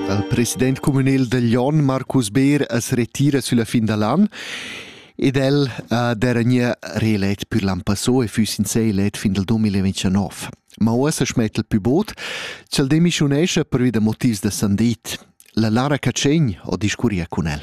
Il president communal da Glion, Marcus Beer, as retira sulla fin da l'an ed el ha dernier reelect pür l'an passò e füss in sé elet fin dal 2029. Ma uossa schmet il pü bod, ch'el demischunescha pervi da motivs da sandit. La Lara Catschegn ho discurria cun el.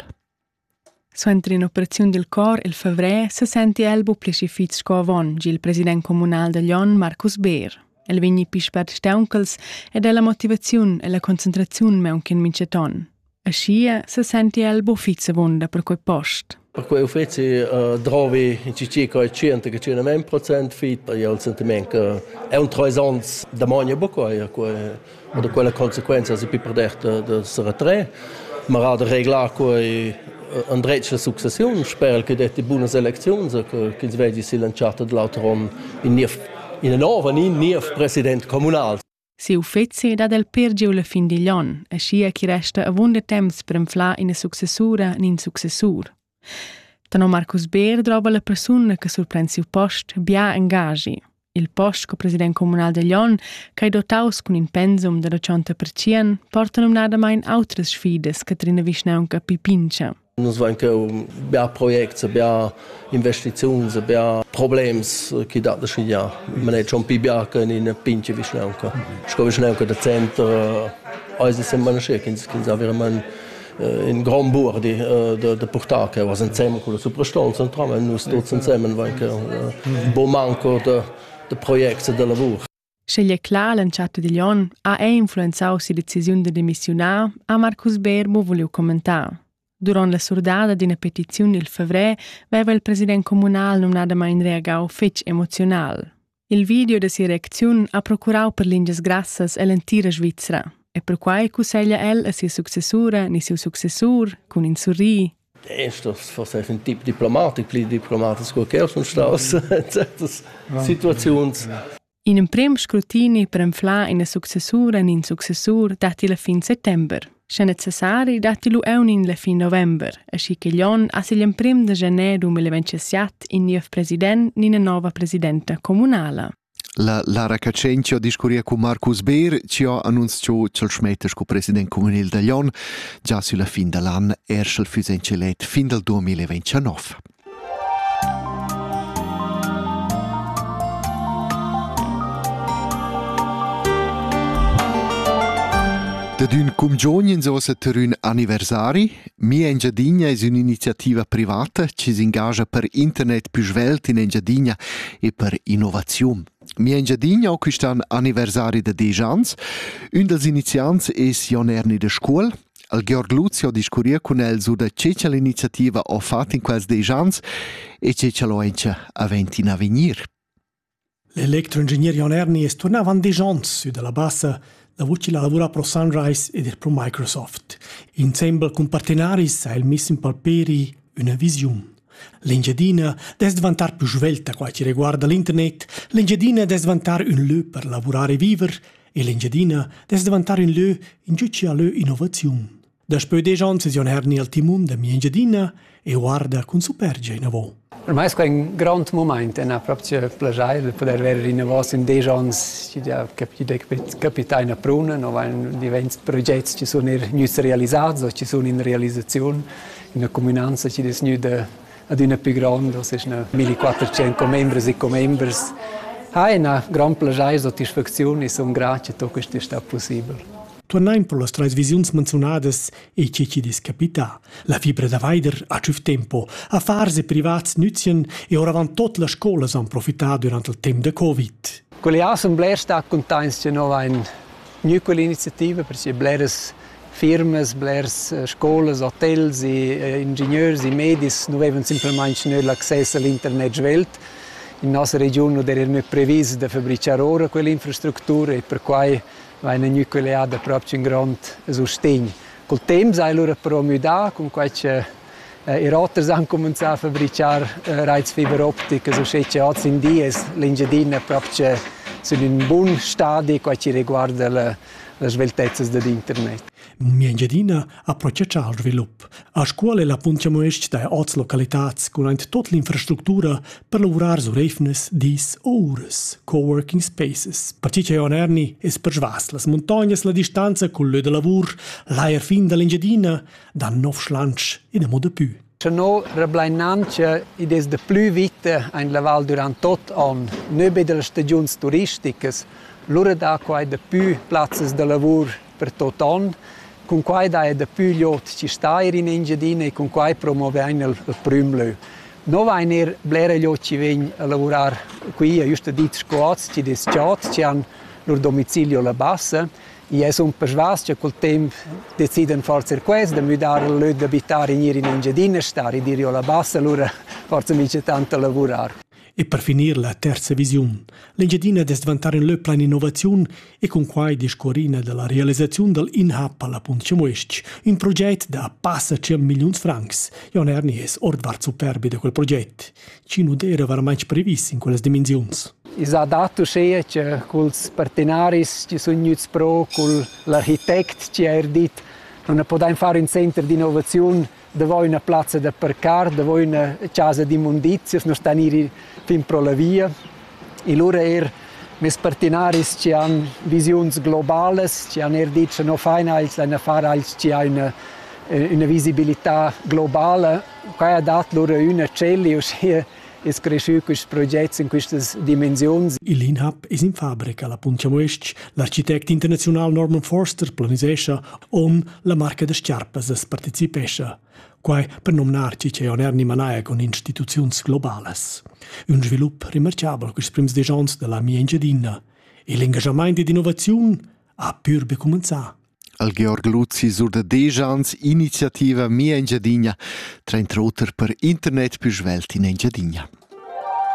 Suenter in'operaziun dil cor il favrer sesenti el buca pli fitg sco avon, gi il president communal da Glion Marcus Beer. El vegni pli spert stauncals ed ha la motivaziun e la concentraziun meunc in mintgaton. Aschia sesenti el buca fitg avunda per quei post. Perquei uffeci uh, drovi in cici coi 100-100 procent fit per il sentiment che è un trois ans da mogna buca quei Ma da quella consequenza es pi perder da se retrer, ma era da reglar quai andretg la successiun, sper che detti bunas elecziuns, ch'ins vegi silanchata da l'auter on ina nova, in niev president communal. Siu uffizi dat el per giu la fin digl on, e schia chi resta avunda temps per enflar ina successura nin successur. Tenor Marcus Beer drova la persuna che surpren siu post bia engaschi. Il post sco president communal da Glion, che ei dotaus cun in pensum da tschonta pertschien, porta numnadamain outras sfidas che trina vischnaunca Pipincha. Nus vein cheu bia projects, bia investiziuns, bia problems che dat da schigliar. Man è schon più bianco in una pinche vischnaunca. Sco vischnaunca da centro, eis es semma nasce ch'ins avere man in grand buor di de, de purtar che was insemmel con la suprastonza entramen nus tuts ensemmen vain che bo manco de, de projects e de lavur Sceglie clar l'entschatta digl onn ha è influenzau si decisiun de demissiunar, ha Marcus Berbo voliu commentar. Durant la surdada d'ina petiziun il fevrer veva il president comunal numnadamain reagau fetg emoziunal. Il video da sia reacziun ha procurau per lingias grassas ell'entira Svizra e perquai cusseglia el a sia successura ni siu successur cun in surri Estos forse ein tip diplomatic, pli diplomatic sco che sun staus certas situaziuns. In emprem scrutini per enflar ina successura en in successur datti la fin settember. Sche necessari datti lu eunin la fin november, aschi ch'igl onn as igl emprim da gener 2027 in niev president ni ina nova presidenta communala. La Lara Cacentio discurria con Marcus Beer, ci ha annunzio ch'el schmetta sco president communal da Jon già sulla fin dall'an, er sch'el füss encelet fin dal 2029. Dad ün cumgiogn ins ossa ter ün anniversari. Mia Engiadina es ün'iniziativa privata chi s'ingagia per internet pü svelt in Engiadina e per innovaziun. Mia Engiadina ho quist'an anniversari da 10 ans. Ün dals iniziants es Jon Erni da Scuol al Georg Luzi ho discurrieu cun el sur da che cha l'iniziativa ho fat in quels desch ans e che cha l'ho auncha avent in avegnir. L'electroingegner Jon Erni es turna avant desch ans sü da la Bassa davot chi la lavura pro Sunrise ed er pro Microsoft. Insembel cun partenaris ha el miss in palperi üna visiun. L'Engiadina dess dvantar più svelta qua chi reguarda l'internet, l'Engiadina dess dvantar ün lö per lavurar e viver E l'Engiadina dess davantar in lö in giu chia lö innovaziun. Daspö desch ans es Jon Herni al timun da mia Engiadina e guarda cun supergia inavo. Ormai è un grande moment è proprio piacere poter vedere innovos in dieci anni ci ha capitato una pruna, no van diventi progetti ci sono gnüts realizzati o ci sono in realizzazione in una comunanza ci des gnüda adüna plü grondos, eschna 1400 commembres e commembers, ha ina grand plaschair e satisfacziun e sun grata che questo è stato possibile. Turnain per las trais visiuns menziunadas e che ci dis capita. La fibra da Weider ha tschüf tempo. Affars e privats nüzien e oravant tot las scolas han profità durant il temp da Covid. Quelle assemblea sta contents che noi ein Gnü quell'iniziativa per sia bleras firmas, blers scolas, hotels e ingegners e medis nu vevan simplamaing tgnü l'access a l'internet svelt. In nossa regiun nu d'eira gnü previs da fabrichar oura quell'infrastructura e perquai vaina gnü collià dapropo ün grond sustegn. Cul temp s'ha el lura però müdà cun quai cha I roters han cuminzà a fabrichar raits fiber opticas uschè cha hoz in di es l'Engiadina propcha sün ün bun stadi qua chi reguarda la las sveltezzas dad internet. Mia Engiadina approccia al svilup. A scuola la puntiamuesc da oz localitats cun aint tot l'infrastructura per lavurar sur eivnas, dis o uras, coworking spaces, perche cha on erni es persvas las muntognas la distanza cul lö da lavur, l'ajer fin da l'Engiadina dan nov schlansch ina moda pü. Tenor Reblainantia id es da plü vita ein la val durant tot on, nöbe dellas stagiuns turisticas, lura da quai da pü plazzas da lavur per tot on, cun quai da è da pü liot ci stair in Engiadina e cun quai promovein il, il prüm lö. No vain er blera liot ci vegn a lavorar qui, a juste dit scoats, ci des chats, ci han lur domicilio la bassa, I es ün persvas cha cul temp decidan forsa ir quels da müdar il lö d'abitar in ir in Engiadina star e dir jo la bassa, lura forsa mincha tant da lavurar. E per finir la terza visiun. L'Engiadina dess dvantar in lö plan innovaziun e cun quai discorrina dalla realisaziun dal InHub alla Punt Cemuestg, un proget da passa 100 milliuns francs. Jon Erni es ordvart superbi da quel proget. chi nu d'eira varmaing previs in quellas dimensiuns. I s'ha dat uschea cha culs partenaris chi sun gnüts pro, cul l'architect chi ha eir dit non ne podain far ün center d'innovaziun davo üna plazza da parcar, davo üna chasa d'immundizias, non stan ir fin pro la via. E lura eir meis partenaris chi han visiuns globalas, chi han eir dit cha no fain els, laina far els, chi ha üna üna visibilità globala Quai ha dat lura üna tschella e uschia es creschü quist progets in quistas dimensiuns. Il INHAB es in fabrica. La Puntia Muestg, l'architect internaziunal Norman Forster planisescha on la marca da schiarpas as partecipescha. Quai per nomnarci che on Erni Manaia con instituziuns globales. Un svilup remarchabel quist prims deis ons da la mia Engiadina. E l'engagamaint ed innovaziun ha pür be cumenzà. Al Georg Luzi surdadegia ans iniziativa Mia Engiadina, trainter oter per internet pü svelt in Engiadina.